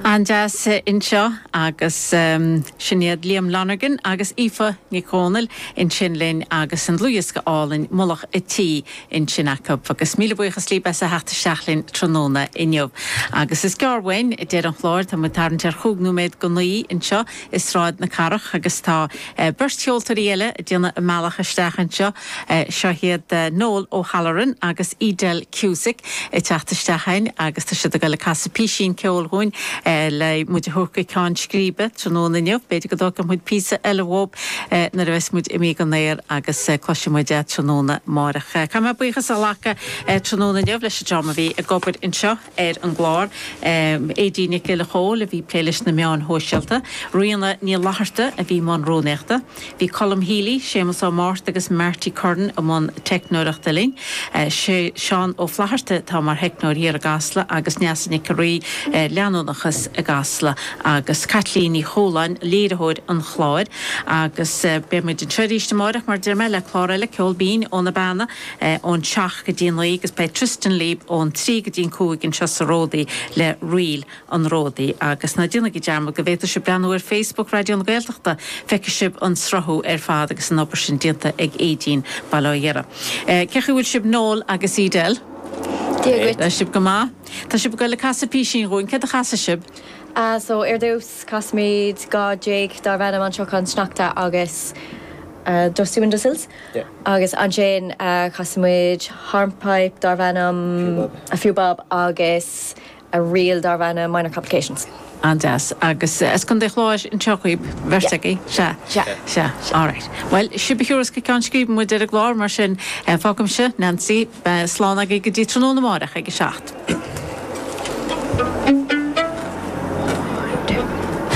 An-deas anseo agus sin iad Liam Lonergan agus Aoife Nic Dhomhnaill ansin linn agus an dlúthdhiosca álainn Mullach a' tSí ansin acu agus míle buíochas libh as a theacht isteach linn tráthnóna inniu. Agus is gearr uainn deireadh an chláir, tá muid ag tarraingt ar chúig nóiméad go naoi anseo, i Sráid na Cathrach agus tá beirt cheoltóirí eile ag déanamh a mbealach isteach anseo. Seo iad Noel O'Halloran agus Edel Cusack ag teacht isteach againn agus tá siad ag dul ag casadh písín ceoil dhúinn le muid a thabhairt go ceann scríbe tráthnóna inniu. B'fhéidir go dtógfaidh muid píosa eile uathub nuair a bheas muid imithe dhen aer agus cloisfidh muid é tráthnóna amáireach. Caithfidh mé buíochas a ghlacadh tráthnóna inniu leis an dream a bhí ag obair anseo. ar an gclár, Aedín Nic Giolla Chomhaill a bhí ag plé leis na meáin shóisialta, Ríona Ní Fhlatharta a bhí i mbun rúnaíochta. Bhí Colm Healy, Séamus Ó Márta agus Marty Curran i mbun teicneoireachta linn. Seán Ó Flatharta atá mar theicneoir thiar i gCasla agus Neasa Nic an Rí ar leanúnachas i gCasla agus Caitlín Ní Chualáin, léiritheoir an chláir. Agus beidh muid anseo arís amárach mar deir mé, le clár eile Ceol Binn ó na Beanna. ón seacht go dtí an naoi agus beidh Tristan libh ón trí go dtí an cúig anseo sa ródaí le Ríl an Ródaí. Agus ná déanaigí dearmad go bhféadfaidh sibh breathnú ar Facebook Raidió na Gaeltachta, feicfidh sibh an sruthú ar fad agus an obair sin déanta ag Aedín, bail ó Dhia uirthi. Cé chaoi bhfuil sibh Noel agus Edel? Dia dhuit. Tá sibh go maith. Tá sibh ag dul ag casadh písín dhúinn. Céard a chasfaidh sibh? Ah so, ar dtús, casfaimid dhá jigs darbh ainm An Siocán Sneachta agus Dusty Windowsills. Agus ansin casfaimid hornpipe darbh ainm A Few Bob agus ríl darbh ainm Minor Complications. An-deas. Agus as Contae an Chláir anseo dhaoibh, an bheirt agaibh? Sea. Sea. Sea. Sea. All right. Bhuel, sibh a thabharfas go ceann scríbe muid ar an gclár, mar sin fágaimse Neansaí, slán agaibh go dtí tráthnóna amárach ag a seacht.